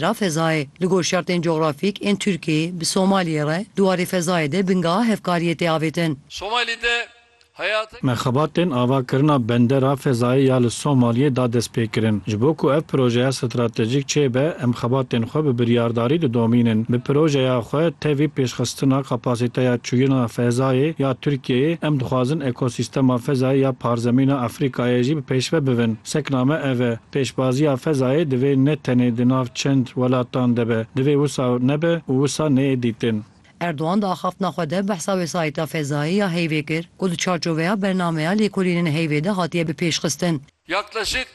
Ra fezayê, li gor şertên cografîk ên Tirkiyeyê bi Somaliyê re di warê fezayê de bingeha hevkariyê tê avêtin. Somalî de heyat. Me xebatên avakirina bendera fezayê ya li Somaliyê da dest pê kirin. Ji bo ku ev projeya stratejîk çêbe, em xebatên xwe bi biryardarî didomînin. Bi projeya xwe tevî pêşxistina kapasîteya çûyina fezayê ya Tirkiyeyê, em dixwazin ekosîstema fezayê ya parzemîna Efrîkayê jî bi pêşve bivin. Sekna me ev e. Pêşbaziya fezayê divê ne tenê di nav çend welatan de be, divê wisa nebe û wisa neyê dîtin. Erdogan di axaftina xwe de behsa wesayeta fezayê ya heyvê kir ku di çarçoveya bernameya lêkolînên heyvê de hatiye bipêşxistin. Yaklaşık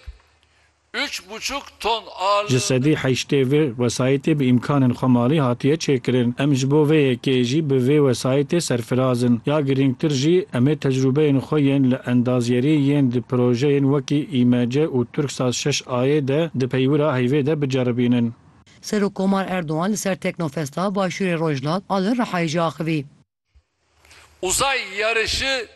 üç buçuk ton Ji ağırlığında. sedî heştê vê wesayetê bi îmkanên xwe malî hatiye çêkirin. Em ji bo vê yekê jî bi vê wesayetê serfiraz in. Ya girîngtir jî, em ê tecrûbeyên xwe yên li endaziyerî yên di projeyên wekî. YMC û Turksat şeş Ayê de di peywira heyvê de biceribînin. Serokkomar Erdogan li ser Teknofesta Başûrê Rojhilat a li Rihayê jî axivî. Uzay yarışı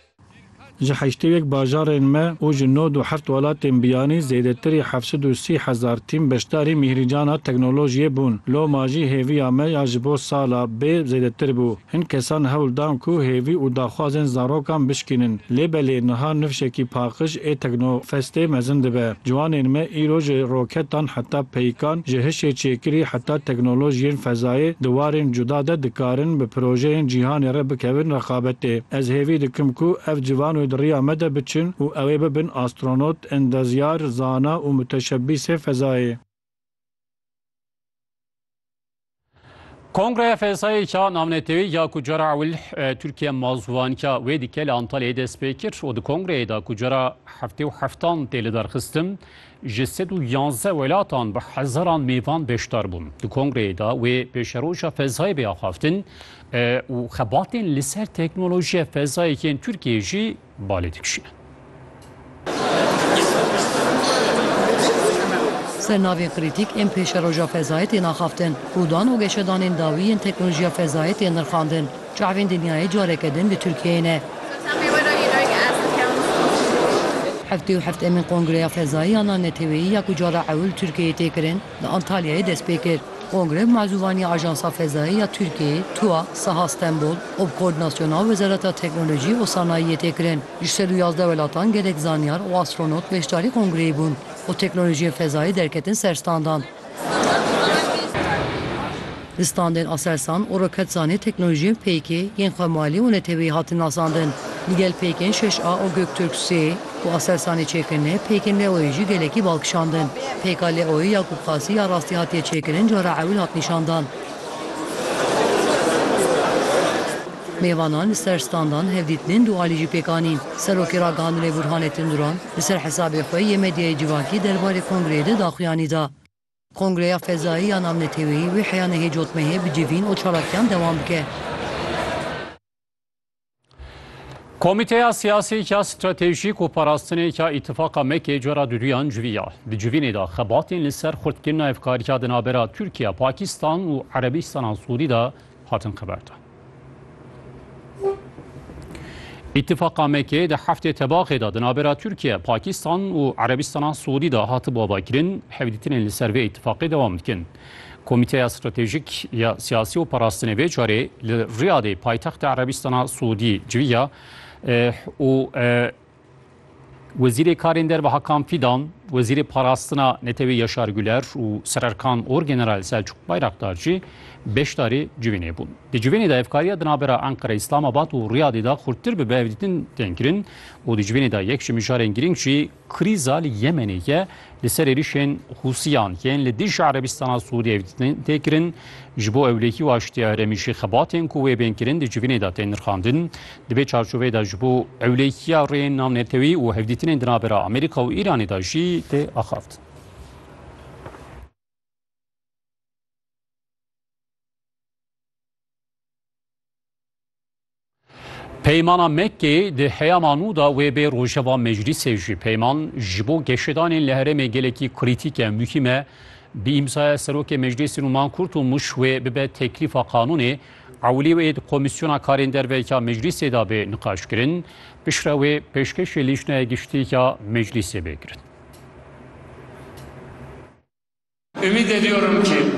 Ji heştê û yek bajarên me û ji nod û heft welatên biyanî zêdetirî heft sed û sî hezar tîm beşdarî mîhrîcana teknolojiyê bûn. Loma jî hêviya me ya ji bo sala bê zêdetir bû. Hin kesan hewl dan ku hêvî û daxwazên zarokan bişkînin. Lê belê niha nifşekî paqij ê teknofestê mezin dibe. Ciwanên me îro ji roketan heta peykan, ji hişê çêkirî heta teknolojiyên fezayê di warên cuda de dikarin bi projeyên cîhanê re bikevin rexabetê. Ez hêvî dikim ku ev civan wê di riya me de biçin û ew ê bibin astronot, endezyar, zana û muteşebbîsê fezayê. Kongreya Fesayê Çağ Navnetewî ya ku cara ewil e, Tirkiye mazûvanka wê dike li Antalyayê dest pê kir û di kongreyê de ku cara heftê û heftan tê li derxistin ji sed û yanzdeh welatan bi hezaran mêvan beşdar bûn. Di kongreyê de wê pêşeroja fezayê bê axaftin e, û xebatên li ser teknolojiya fezayê yên Tirkiyeyê jî balê dikişîne. Sernavên krîtîk ên pêşeroja fezayê tên axaftin û dan û geşedanên dawî yên teknolojiya fezayê tên nirxandin. Çavên dinyayê careke din li Tirkiyeyê ne. Heftê û heft emîn Kongreya Fezayî ya Naneteweyî ya ku cara ewil li Tirkiyeyê tê kirin, Li Antalyayê dest pê kir kongre bi mazûvanî Ajansa Fezayê ya Tirkiyeyê, TUA, Saha Stenbol û bi koordînasyona Wezareta Teknolojî û Sanayiyê tê kirin. Ji sed û yazdeh welatan gelek zanyar û astronot beşdarî kongreyê bûn û teknolojiyên fezayê derketin ser standan. Di standên Aselsan û Roketsanê teknolojiyên PK yên xwe malî û neteweyî hatin nasandin. Digel PK'ên şeş A û Göktürk sê ku Aselsanê çêkirine, PK'ên Leo'yê jî gelekî bal kişandin. PKa Leo'yê ya Kûpqasî ya rastî hatiye çêkirin cara ewil hat nîşandan. Mêvanan li ser standan hevdîtinên du alî jî pêk anîn. Serokê Ragihandinê Burhanettin Duran li ser hesabê xwe yê medyayê civakî derbarê kongreyê de daxuyanî da. Kongreya Fezayî ya Navneteweyî wê heya nehê cotmehê bi civîn û çalakiyan dewam bike. Komîteya Siyasî ya Stratejîk û Parastinê ya Îtifaqa MEK'ê cora duduyan civiya. Di civînê de xebatên li ser xurtkirina hevkariya di navbera Tirkiye, Pakistan û Erebîstana Sûrî de hatin qeberdin. Îtîfaqa Mekê di heftê tebaxê de di navbera Tirkiye, Pakistan û Erebistana Siûdî de hatibû avakirin, hevdîtinên li ser vê îtîfaqê dewam dikin. Komîteya Stratejîk ya Siyasî û Parastinê vê carê li Riyadê paytexta Erebistana Siûdî civiya û Wezîrê Karên Derve Hakan Fîdan, Wezîrê Parastina Netewê Yaşar Güler û Sererkan Orgeneral Selçuk Bayraktar jî beşdarî civînê bûn. Di civînê de hevkariya di navbera Enqere, Îslamabad û Riyadê de xurttir bibe hevdîtin tên kirin û di civînê de yek ji mijarên girîng jî krîza li Yemenê ye Li ser êrişên Hûsiyan yên li dijî Erebistana Sûriyeyê tê kirin, ji bo ewlehî û aştiya herêmî jî xebatên ku wê bên kirin di civînê de tên nirxandin. Di vê çarçoveyê de ji bo ewlehiya rêyên navnetewî û hevdîtinên di navbera Amerîka û Îranê de jî tê axaftin. Peymana Mekkê di heyama nû da wê bê rojeva meclîsê jî peyman ji bo geşedanên li herêmê gelekî krîtîk e, muhîm e. Bi îmzaya Serokê Meclîsê Nûman Kurtulmuş wê bibe teklîfa qanûnê. Ewilî wê di Komîsyona Karên Derve ya Meclîsê de bê niqaşkirin. Piştre wê pêşkêşî Lîjnaya Giştî ya Meclîsê bê kirin.